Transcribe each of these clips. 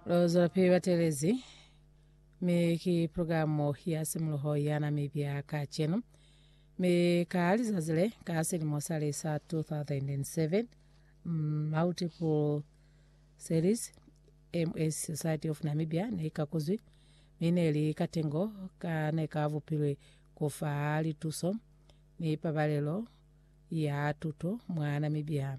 Lo zwelapili batelezi mi ki pulugalamu ya simuluho ya Namibia kacenu mi ka lizazi le ka silimo sa li sa 2007 mm, multiple series MS Society of Namibia ne ka kuzwi mi ne li katengo ka ne ka vupilwe ku fa lituso ni pabalelo ya tuto mwa Namibia.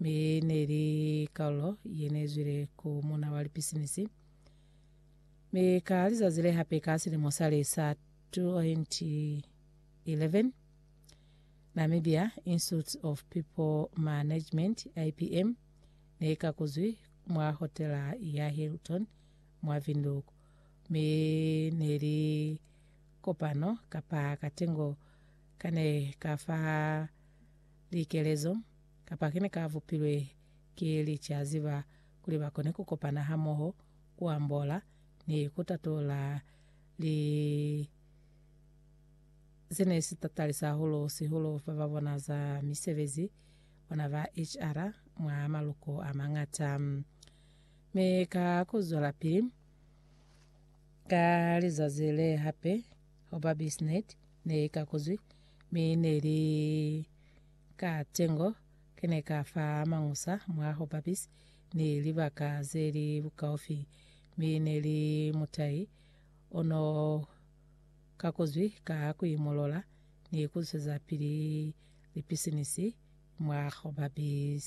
Mi neli kalulo yenezwile ku muna wa lipisinisi. Mi ka lizazi lehape ka silimo sale sa 2011, Namibia Institute of People Management, IPM, neikakuzwi mwa hotela ya Hilton mwa Windhoek. Mi neli kopano kapa katengo kane kafa likelezo, kapa kene ka bupilwe ki licazi ba kuli ba kone ku kopana hamoho, ku ambola, ni ku tatula li se ne si tatalisa hahulu sihulu ba ba bona za misebezi bona ba HR mwa maluko a mangata. Mi ka ku zwelapili ka lizazi le hape, Hoba bisnet ne i kakuzwi, mi ne li ka tengo, ki ne ka fa mañusa mwa hoba bis ni libaka ze li bukaufi, mi ne li mutai o no kakuzwi ka ku imolola ni ku zwezapili lipisinisi mwa hoba bis.